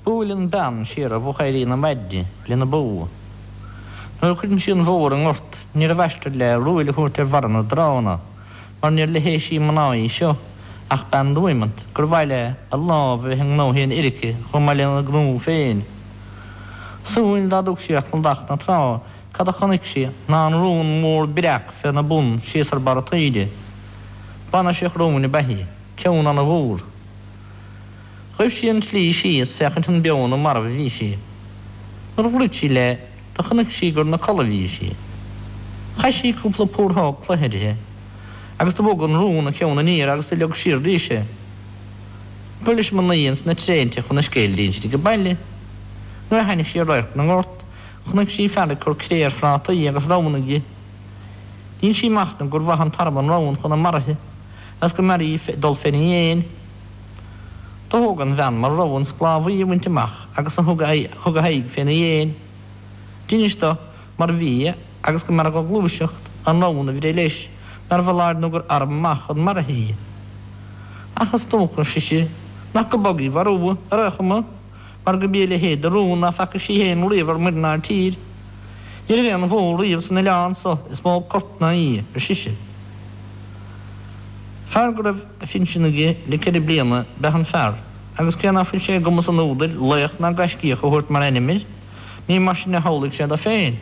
Buaileann bean siar ar mhochóirí na maidne lena bó. Nuair a chuireann sí an bhó ar an ngort níorbh aistear léi ruaill a thabhairt ar bharra na dtránna mar níor leithéisí mná í seo ach bean Duymount gur mhaith léi a lámh a bheith i ngnóthaí an fhir aici chomh maith lena gnó féin. Súil dá dtug sí ar chladach na trá cad a chonaic sí ná an rón mór breac féna bun síos ar barra taoide. Bainirseach róin ab ea í, ceann ana-mhór. Ghaibh sí an tslí síos féachaint an beo nó marbh a bhí sí. Nuair a dhruid sí léi do chonaic sí gur 'na codladh a bhí sí. Chaith sí cúpla púróg cloiche uirthi agus do bhog an rón a ceann aniar agus do leag siar arís é. B'iúd leis an mnaoi ins na tréinte chun a scéil d'insint ag baile. Nuair a tháinig sí ar radharc na ngort chonaic sí fear ag cur cré ar phrátaí agus ramhann aige. Dhin sí machtnamh gur mhaith an t-arm an ramhann chun a maraithe. is go mb'fhearra dhi dul féna dhéin. Do thóg an bhean mar rogha an sclábhaí a bhaint amach agus do thug a h-aghaidh féna dhéin. D'innis do mar bhí agus go mb'fhearra dho gluaiseacht an ramhann a bhreith leis nár bhfoláir nó gur arm maith chun maraithe í. Ach is dócha, ar sise, nach go bog í mharbhú, ar aon chuma, mar go mb'í a leithéid de rón ná faca sí fhéin riamh ar muir ná ar tír. Ní raibh aon bhó riamh san oileán so is mó corp ná í, ar sise. Fear go raibh a phinsean aige le ceithre bliana b'eadh an fear, agus cé ná fuil sé i gcumas an údair laoch ná gaiscíoch a thabhairt mar ainm air, ní mar sin a shamhlaigh sé do féin.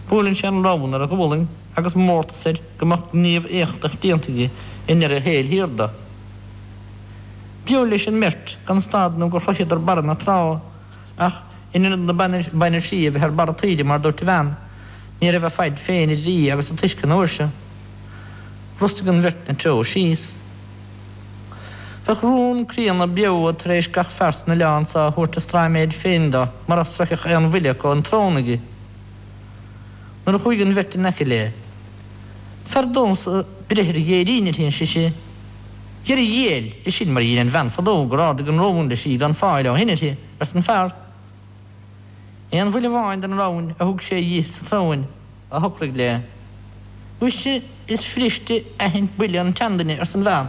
Buaileann sé an ramhan ar a ghualainn agus mórtas air go mbeadh gníomh éachtach déanta aige i ndeireadh a shaoil thiar do. B'iúd leis an mbeirt gan stad nó gur shroicheadar barra na trá ach in ionad na bainirsí a bheith ar barra taoide mar dúirt an bhean, ní raibh a faid féin idir í agus an t-uisce an uair seo. Bhrostaigh an bheirt 'na treo síos. Bheadh rón críonna beo tar éis gach fear san oileán so a thabhairt a straiméid féin do mura sroicheadh aon bhuille acu an tsrón aige. Nuair a chuaigh an bheirt in aice léi. Fearr domhsa breith ar dheireadh uirthi, ar sise. Dhera a dhiail, is sin mar a dhein an bhean fadó gur ardaigh an rón leis í gan fáil ó shin uirthi, arsa an fear. Aon bhuille amháin den ramhainn a thug sé dhi sa tsrón a shocraigh léi. Mhuise is fuiriste aithint buille an tseanduine, arsa an bhean.